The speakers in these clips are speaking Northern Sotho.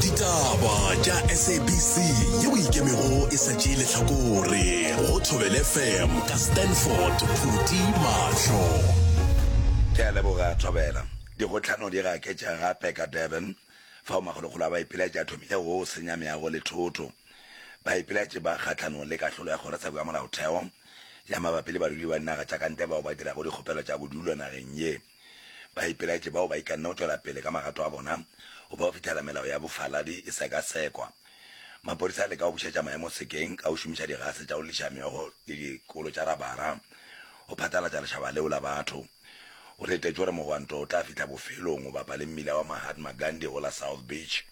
ditaba tša sabc ye o ikemego e sa tšee letlhakore go thobele fm ka stanford phuti mahlo ke a leboga thobela dikgotlhano di gaketša gape ka durban fao makgolokgolo a baipiletši a thomile go senya meago le thoto baipiletši ba kgatlhanong le kahlolo ya kgorotsheko ya molaotheo ya mabapi le badudi ba dinaga tša kantle bao ba dirago dikgopelo tša bodulo nageng ye Baipeletše bao ba ikanne go tšwela pele ka magato a bona go ba go fihlela melao ya bofaladi e sekasekwa. Maphodisa a leka go bušetša maemo sekeng ka go šomiša digase tša go lliša meogo le dikolo tša rabara go phatlalatša lešaba leo la batho. Go letetšwe gore mogwanto o tla fihla bofelong go bapa le mmila wa Mahatma Gandhi go la South Beach.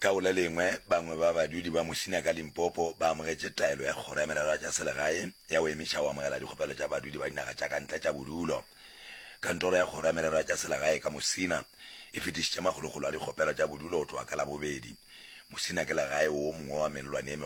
Ka go le lengwe, bangwe ba badudi ba Musina ka Limpopo ba amogetše taelo ya Kgoro ya Merero ya tša Selegae ya go emiša go amogela dikgopelo tša badudi ba dinaga tša ka ntle tša bodulo. Kantoro ya Kgoro ya Merero ya tša Selegae ka Musina e fetišitše makgolokgolo a dikgopelo tša bodulo go tloga ka Labobedi. Musina ke legae wo mongwe wa melelwane e megolo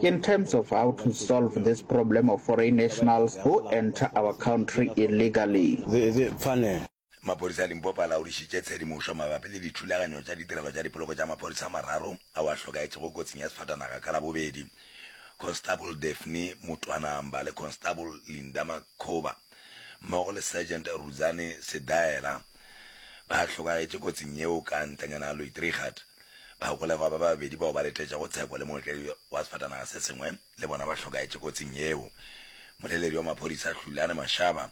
In terms of how to solve this problem of foreign nationals who enter our country illegally. Maphodisa a Limpopo a laodišitše tshedimošo mabapi le dithulaganyo tša ditirelo tša dipoloko tša maphodisa a mararo ao a hlokaetšego kotsing ya sefatanaga ka Labobedi. Constable Daphne Mutwanamba le Constable Linda Makhoba mmogo le Sergeant Rudzani Sedaela ba hlokagetše kotsing yeo ka ntlenyana Luitrigat. Bagolegwa ba babedi bao ba letetšego tshepo le mootledi wa sefatanaga se sengwe le bona ba hlokaetše kotsing yeo. Moleledi wa maphodisa Hlulane Mashaba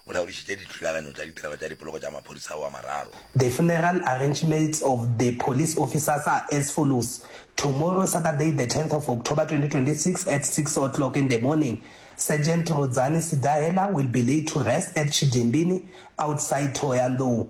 o laodišitše dithulaganyo tša ditirelo tša dipoloko tša maphodisa ao a mararo. The funeral arrangements of the police officers are as follows, Tomorrow, Saturday the tenth of October, twenty twenty six, at six o'clock in the morning, Sergeant Rodzani Sidahela will be laid to rest at Chidimbini, outside Thohoyandou.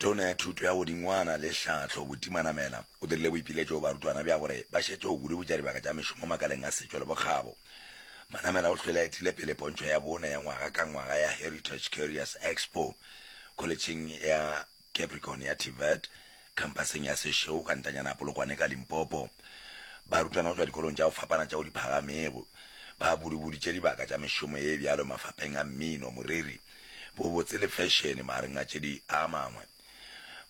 Tona ya Thuto ya Godingwana le Tlhahlo Buti Manamela o dirile boipiletšo go barutwana bja gore ba šetše go kudu-butša dibaka tša mešomo makaleng a setšo le bokgabo. Manamela o hlwele a etile pele pontšho ya bone ya ngwaga ka ngwaga ya Heritage Curious Expo kholetšheng ya Capricorn ya TVET, Khampaseng ya Seshego ka ntanyana ya Polokwane ka Limpopo, barutwana go tšwa dikolong tša go fapana tšeo di phagamego ba budi-buditše dibaka tša mešomo ye bjalo mafapeng a mmino, moriri, bobotse le fešene magareng a tše di a mangwe.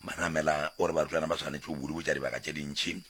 Manamela o re barutwana ba swanetše go budi-butša dibaka tše dintši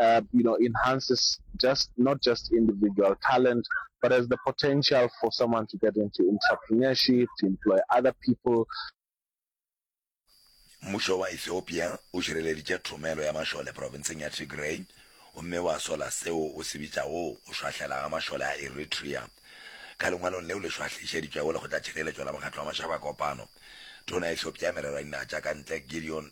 um you know enhances just not just individual talent but has the potential for someone to get into entrepreneurship to employ other people Mmušo wa Ethiopia o šireleditše thomelo ya mašole profenseng ya Tigray gomme wa sola seo o se bitšago go šwahlela ga mašole a Eritrea. Ka lengwalong leo le šwahlišeditšwego Lekgotlatšhireletšo la Mokgatlo wa Mašabakopano, Tona ya Ethiopia ya Merero ya Dinaga tša ka Ntle Gideon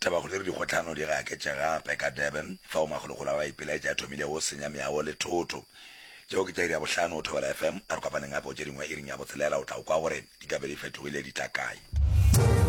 Taba gore dikgotlhano di gaketše gape ka Durban fao makgolokgolo a ba ipelaetša a thomilego go senya meago le thoto. Tšeo ke tša iri ya bohlano go Thobela FM. A re kopaneng gape go tše dingwe iring ya botshelela go tla go kwa gore ditabe di fetogile di tla kae.